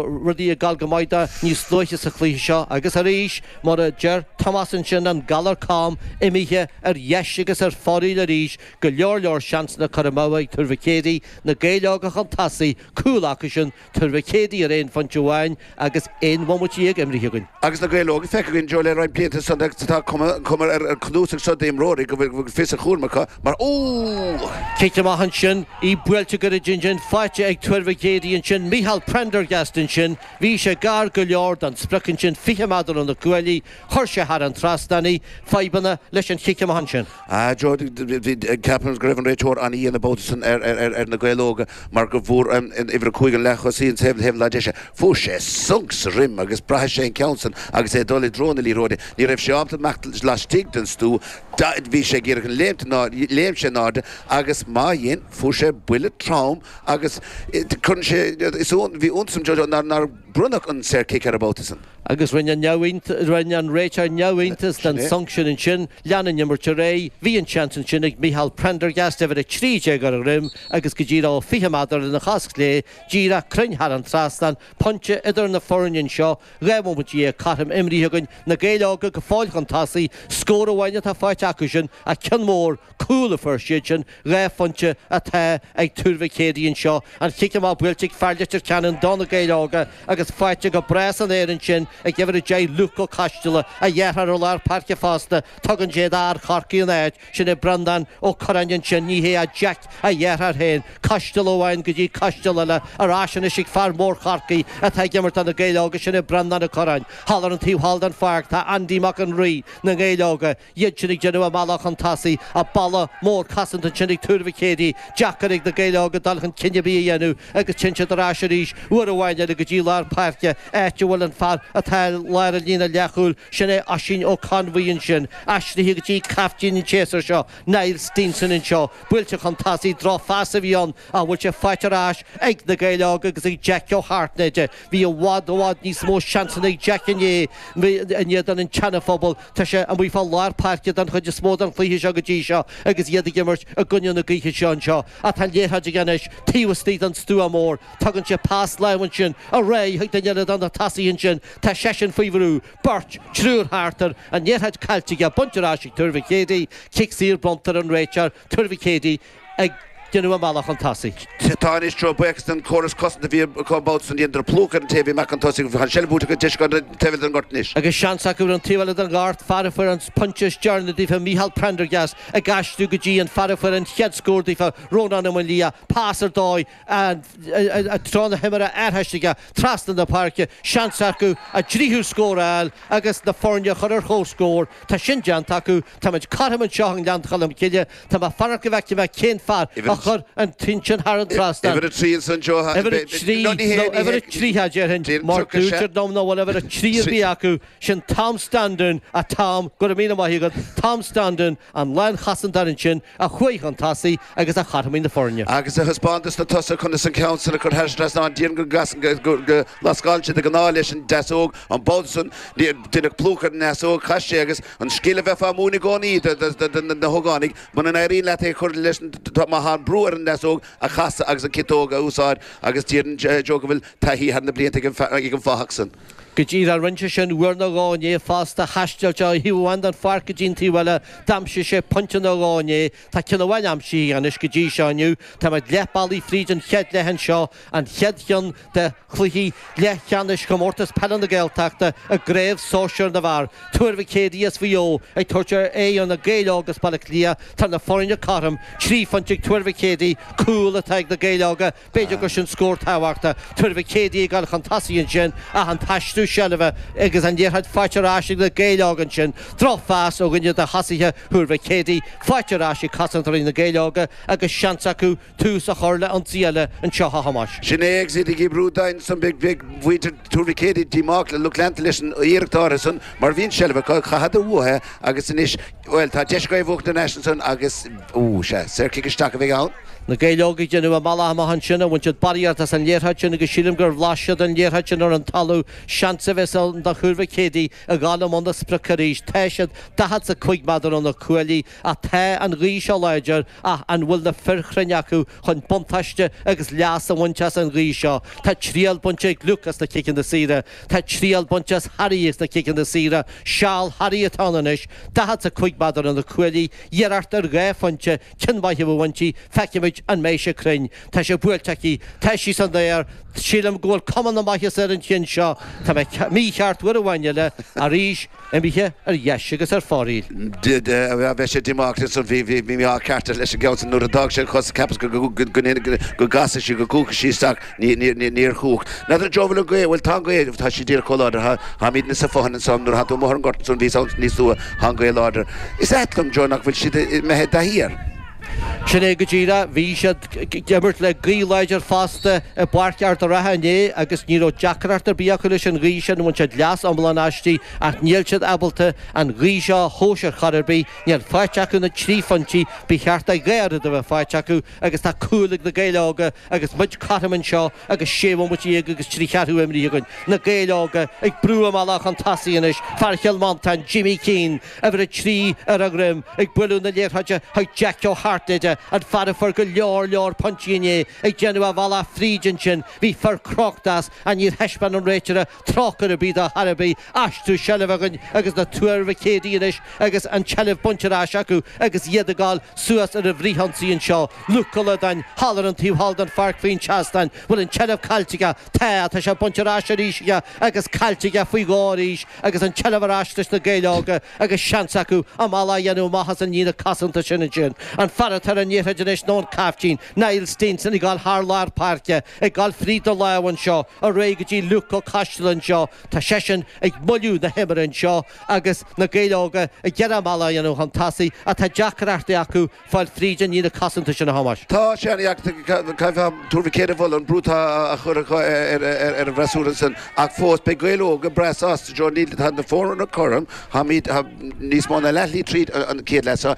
rudaí ag dul go maith dó níos luaithe sa chluiche seo agus arís, mar a deir Tomás ansin, an galar cam imithe ar dheis agus ar fóraoil arís, go leor leor seansanna curtha amú ag Tuar Mhic Éadaigh, na Gaeil Óga chun tosaigh, cúl acusan, Tuar Mhic Éadaigh ar aon phointe amháin agus aon bhomaite dhéag imeartha againn. Agus Na Gaeil Óga feicthe againn, Jo, le roinnt blianta san, tá cuma ar an cnuasach seo d'imreoirí go bhfuil fios a gcúraim acu mar Ó! Cic amach ansin, í buailte go righin ansin, faighte ag Tuar Mhic Éadaigh ansin, Micheál Prendergast ansin, bhí sé gar go leor don sprioc ansin, 20 meadar ó na cuaillí, chuir sé thar an trasnán í, fadhbanna leis an chic amach ansin. Ceapaim go raibh an réiteoir an-dhian an babhta san ar Na Gaeil Óga mar go bhfuair an uimhir a cúig an leath-thosaí, ar thaobh na láimhe deise. Fuair sé sonc sa dhroim agus braithfidh sé an ceann san agus é ag dul i dtreo na liathróide. Ní raibh sé ábalta imeacht laistigh den stua, bhí sé ag iarraidh léimt in airde, léim sé in airde agus má dhein, fuair sé buille trom agus bhí iontas orm nár. Bronnadh an saorchic air an babhta san. Agus rinne an rinne an réiteoir neamhiontas den sonc sin ansin, lean an imirt ar aghaidh, bhí an seans ansin ag Michael Prendergast uimhir 13 ar a dhroim agus go díreach 20 meadar lena chos chlé díreach cruinn thar an trasnán, pointe idir na foirne anseo, dhá bhomaite dhéag cothrom imeartha againn, Na Gaeil Óga go fóill chun tosaigh, scór amháin atá faighte acusan ach ceann mór cúl a fuair siadsean, dhá phointe atá ag Tuar Mhic Éadaigh anseo an chic amach buailte ag fear Leitir Ceanainn do na Gaeil Óga agus faighte go breá san aer ansin ag uimhir 10 Luke Ó Coistealla, a dheartháir ó lár páirce fosta, tugann sé d'fhear Chorcaí an áit sin ag Breandán Ó Curráin ansin, ní hé ach Jeaic a dheartháir féin, Coistealla amháin go dtí Coistealla eile ar ais anois ag fear mór Chorcaí atá ag imirt do na Gaeil Óga, sin é Breandán Ó Curráin. Thall ar an taobh thall den pháirc tá Andy Mac an Rí na nGaeil Óga, iadsan ag déanamh a mbealach chun tosaigh, ach balla mór cosanta ansin ag Tuar Mhic Éadaigh, deacair ag na Gaeil óga dul chun cinn ar bith a dhéanamh, agus téann siad ar ais arís uair amháin eile go dtí lár páirce, áit a bhfuil an fear atá i lár an líne leathchúil, sin é Oisín Ó Conmhuí ansin, aistrithe go dtí caiftín an tséasúir seo, Niall Steenson anseo, buailte chun tosaigh, drochphas a bhí ann ach an bhfuil sé faighte ar ais ag na Gaeil Óga agus ag Jeaic Ó hAirtnéide? Bhí i bhfad, i bhfad níos mó seansanna ag Jeaic inné in éadan an tSeana-Phobail, Tá sé amuigh fá lár páirce don chuid is mó den chluiche seo go dtí seo agus iad ag imirt i gcoinne na gaoithe seo anseo ach tá an liathróid aige anois taobh istigh den stua mór, tugann sé pas láimh ansin ar aghaidh chuig duine eile de na tosaithe ansin, tá seisean faoi bhrú, beirt, triúr thart air, an liathróid caillte aige, bainte ar ais ag Tuar Mhic Éadaigh, cic saor, bronnta ag an réiteoir, Tuar Mhic Éadaigh, ag déanamh a mbealach chun tosaigh. Tá anois Joe buíochas den córas cosanta a bhí acu an babhta san. Dheineadar plúchadh ar an té a bhí amach chun tosaigh agus tá an seilbh buaite acu deis acu ar an taobh eile den ghort anois. Agus seans acu ar an taobh eile den ghort, fear a fuair an pointe is deireanaí daofa Micheál Prendergast ag aistriú go dtí an fear a fuair an chéad scór daofa Rónán Ó Maolaodha pas ar dóigh treo na himeartha aistrithe trasna na páirce, seans acu a dtríú scór a fháil agus na foirne a chur ar chomhscór. Tá sin déanta acu Táimid cothrom anseo i nGleann Cholm Cille. Tá mé ag fanacht go bhfeicfidh mé cén fear a chuir an ceann sin thar an trasnán. Uimhir a trí ansan anseo, a. Uimhir a trí, nó uimhir a tríocha déarfainn, mar deirtear dom nach bhfuil uimhir a trí ar bith acu, sin Tom Standún, a Tom, go raibh míle maith agat, Tom Standún, an lánchosantóir ansin, a chuaigh chun tosaigh agus a chothromaigh na foirne. Agus a thaispeáin dos na tosaithe conas an ceann san a chur thar trasnán déarfainn go lascálann sé de ghnáth leis an deasóg, an babhta san, deineadh plúchadh ar an ndeasóg, chas sé agus an scil a bheifeá á mhúineadh i gcónaí do na hógánaigh, muna n-éiríonn leat é a chur leis an, má thagann brú ar an ndeasóg, casadh agus an ciotóg a úsáid agus déarfainn Joe go bhfuil taithí thar na blianta ag an fathach san. Go díreach rinne sé sin uair nó dhó inné fosta thaistil sé ó thaobh amháin den pháirc go dtí an taobh eile, d'aimsigh sé pointe nó dhó inné, tá ceann amháin aimsithe anois go dtí seo inniu, táimid leath bealaigh fríd an chéad leath anseo, an chéad cheann de chluichí leathcheannais Chomórtas Peile na Gaeltachta i gCraobh Sóisear na bhFear, Tuar Mhic Éadaigh as Mhaigh Eo ag tabhairt aghaidh ar Na Gaeil Óga as Baile Átha Cliath, tá na foirne cothrom, trí phointe ag Tuar Mhic Éadaigh, cúl atá ag Na Gaeil Óga B'fhéidir gur sin scór tábhachtach, Tuar Mhic Éadaigh ag gabháil chun tosaigh ansin ach an t-aistriú seilbhe agus an liathróid faighte ar ais ag na Gaeil Óga ansin. Drochphas ó dhuine de thosaithe Thuar Mhic Éadaigh faighte ar ais ag cosantóirí Na Gaeil Óga agus seans acu tús a chur le ionsaí eile anseo, a Thomáis. Sin é, agus iad ag oibriú dian ansan, beidh muintir Thuar Mhic Éadaigh díomách le lucht leanta leis an iarracht áirithe san mar bhí an tseilbh acu, chaitheadar uathu é agus anois, Bhuel, tá deis acu í a bhuachan ar ais ansan agus, ó, sea, saorchic isteach a bheidh ann. Na Gaeil Óga ag déanamh a mbealach amach ansin, bhain siad barraíocht as an liathróid sin agus sílim gur bhlais siad an liathróid sin ar an talamh, seans a bheas ann do Thuar Mhic Éadaigh a ghabháil i mbun na sprioc arís, tá siad daichead 's a cúig meadar óna cuaillí ach tá an ghaoth seo láidir ach an bhfuil na fir chruinn acu chun buntáiste agus leas a bhaint as an ghaoth seo, tá triail bainte ag Luke as na ciceanna saora. Tá triail bainte ag Harry as na ciceanna saora, seal Harry atá ann anois, daichead is a cúig meadar óna cuaillí, iarracht ar dhá phointe ceann maith a bheadh inti, feicfimid an mbeidh sé cruinn. Tá sé buailte aige, tá sí san aer, sílim go bhfuil cuma na maitheasa ar an cheann seo, tá mé mícheart, uair amháin eile, arís, imithe ar dheis agus ar fóraoil. Bheadh sé diomách de san, bhí ádh ceart air leis an gceann sin. Nuair a d'fhág sé an chos cheapas go gcasfadh sí, go gcuachfadh sí isteach, níor chuach. N'fheadar Joe an bhfuil an ghaoth, bhuel tá an ghaoth, tá sí díreach chomh láidir, táimid insa bhfothain ansan, nuair atá tú amuigh ar an ngort ansan bhíos ann níos luaithe, tá an ghaoth láidir. Is ait liom, Joe, nach bhfuil siad imithe de shíor. Sin é go díreach. Bhí siad ag imirt le gaoth láidir fosta i bPáirc Ard a' Rátha inné agus ní raibh deacracht ar bith acu leis an ghaoth sin, bhain siad leas iomlán aisti, ach níl siad ábalta an ghaoth seo a thomhas ar chor ar bith, níl faighte acu na trí phointí ba cheart a dhá oiread a bheith faighte acu agus tá cúl ag Na Gaeil Óga agus muid cothrom anseo agus sé bhomaite dhéag agus trí cheathrú imeartha againn. Na Gaeil Óga ag brú a mbealach chun tosaigh anois, fear Chill Mhantáin, Jimmy Keane, Uimhir a trí ar a dhroim, ag bualadh na liathróide chuig Jeaic Ó hAirtnéide, an fear a fuair go leor leor pointí inné, ag déanamh a bhealach fríd ansin. Bhí fir crochta as, ach níor thaispeáin an réitire trócaire ar bith dá thairbhe, aistriú seilbhe againn agus na Tuar Mhic Éadaigh anois agus an tseilbh bainte ar ais acu agus iad ag goil suas ar an bhfrithionsaí anseo. Luke Gullodáin, thall ar an taobh thall den pháirc faoin seastán, bhfuil an tseilbh caillte aige, Tá, tá sé bainte ar ais arís aige agus caillte aige faoi dhó arís agus an tseilbh ar ais leis na Gaeil Óga agus seans acu a mbealach a dhéanamh amach as an líne cosanta sin ansin. An fear atá ar an liathróid anois nó an caiftín, Niall Steenson ag goil thar lár páirce, ag goil fríd do lámh anseo, ar aghaidh go dtí Luke Ó Coisteala anseo, tá seisean ag moilliú na himeartha anseo agus na Gaeil Óga ag iarraidh a mbealach a dhéanamh chun tosaigh ach tá deacrachtaí acu fáil tríd an líne cosanta sin a Thomáis. Tá sé ana dheacair Tuar Mhic Éadaigh a mholadh, an brú atá á chur acu ar an bhfreasúra ansin, ach fós beidh Gaeil Óga breá sásta, Joe Neil, tá na foirne cothrom, táimid níos mó ná leathshlí tríd an chéad leath seo,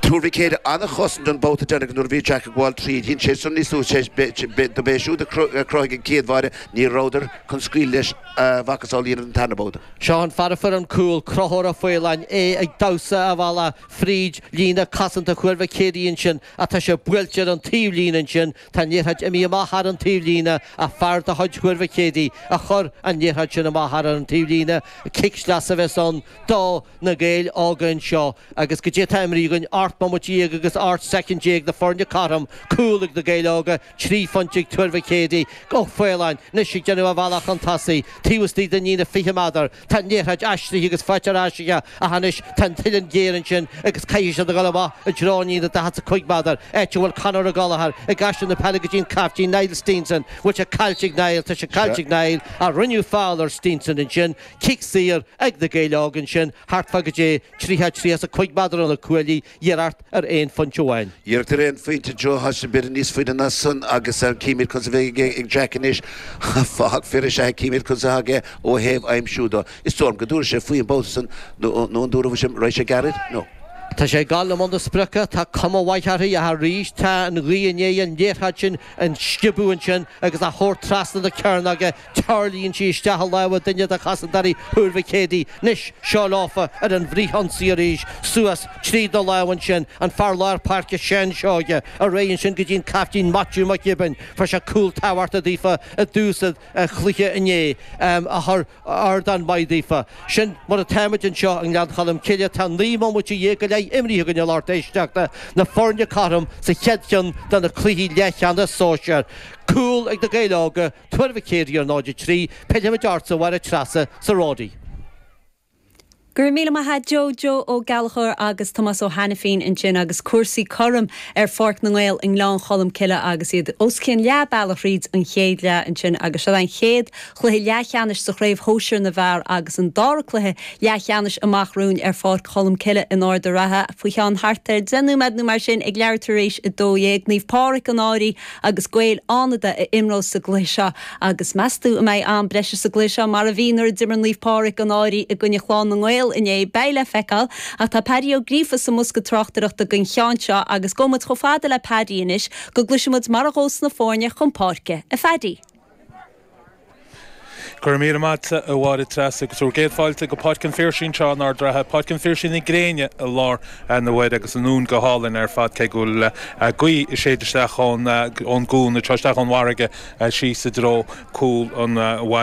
Tuar Mhic Éadaigh ana chosaint an babhta deireanach nuair a bhí Jack ag gabháil tríd, dhein sé sin níos luaithe, dob é siúd a chruthaigh an chéad bháire, ní rabhadar chun scaoileadh leis a mhacasamhail a dhéanamh den tarna babhta. Seo an fear a fuair an cúl, Conchúr Ó Faoláin, é ag damhsa a bhealach. fríd líne cosanta Thuar Mhic Éadaigh ansin ach tá sé buailte ar an taobhlíne ansin, tá an liathróid imithe amach thar an taobhlíne ach fear de chuid Thuar Mhic Éadaigh a chuir an liathróid sin amach thar an taobhlíne, cic sleasa a bheas ann do na Gaeil óga anseo agus goidé tá imeartha againn ocht mbomaite dhéag agus ocht soicind déag na foirne cothrom, cúl ag na Gaeil Óga, Trí phointe ag Tuar Mhic Éadaigh. Ó Faoláin 'nois ag déanamh a bhealach chun tosaigh, taobh istigh de líne an fiche méadar. Tá an liathróid aistrithe agus faighte ar ais acu ach anois tá an uilleann géar ansin agus caithfidh siad a dhul amach i dtreo líne an daichead 's a cúig méadar, áit a bhfuil Conor Ó Gallagher ag aistriú na peile go dtí an caiftín Niall Steenson, bhfuil sé caillte ag Niall, tá sé caillte ag Niall ach rinneadh feall ar Steenson ansin, cic saor ag na Gaeil óga ansin thart fá goidé tríocha tríocha 's a cúig méadar ó na cuaillí, Iarracht ar aon phointe amháin. Iarracht ar aon phointe is dócha, seo b'fhéidir níos faide ná san agus chímid conas a bheidh ag Jack anois. Fathach fir is ea é, chímid conas atá aige ó thaobh aimsiú dó. Is dóigh liom go dtabharfaidh sé faoi an babhta san, nó an dtabharfaidh sé? Raghaidh sé gairid? No. Tá sé ag dul i mbun na sprioce, tá cuma mhaith uirthi, ach arís tá an ghaoth i ndiaidh an liathróid sin a sciobadh ansin agus a thabhairt trasna na cearnóige Tarlaíonn sí isteach i lámha duine de chosantóirí Thuar Mhic Éadaigh, nois, seo leofa ar an bhfrithionsaí arís, suas trí na lámha ansin, an fear lár páirce Seán Seoighe, ar aghaidh ansin go dtí an caiftín Maitiú Mac Giobáin, fuair sé cúl tábhachtach daofa i dtús an chluiche inné, a chuir ardán maith daofa. Sin mar atáimid anseo i nGleann Cholm Cille, tá naoi mbomaite dhéag go leith imríthe againn a lucht éisteachta, na foirne cothrom sa chéad cheann de na cluichí leathcheannais sóisir, cúl ag Na Gaeil Óga, Tuar Mhic Éadaigh ar náid a trí, pillfidh muid ortsa a Mháire Treasa, sa Ródaí. Go raibh míle maith a'd Joe Joe Ó Gallachóir agus Tomás Ó hAinifín ansin agus cúrsaí cothrom ar Pháirc na nGael i nGleann Cholm Cille agus iad os cionn leath bealaigh thríd an chéad leath ansin agus seo é an chéad chluiche leathcheannais sa Chraobh Shóisir na bhFear agus an dara cluiche leathcheannais amach romhainn ar Pháirc Cholm Cille in Ard a' Ratha faoi cheann thart ar deich nóiméad nó mar sin ag leathuair tar éis a dó dhéag. Naomh Pádhraic an Fhairche. agus Gaeil Fhánada a imreos sa gcluiche seo agus meastú an mbeidh am breise sa gcluiche seo mar a bhí nuair a d'imir Naomh Pádraig an Fhairche i gcoinne Chlann na nGael inné? Beidh le feiceáil ach tá Paddy Ó Gríofa sa mbosca tráchtaireachta don cheann seo agus gabhfaidh muid chomh fada le Paddy anois go gcloisfidh muid mar a ghabhas na foirne chun páirce, a Phaddy! Go raibh míle maith agatsa, a Mháire Treasa, agus bhur gcéad fáilte go Páirc an Phiarsaigh anseo in Ard Ratha, Páirc an Phiarsaigh na gréine i lár na maidine agus an uain go hálainn ar fad, cé go bhfuil gaoth ag séideadh isteach ón gcuan, nó isteach ón bhfarraige síos i dtreo cúl an bhaile.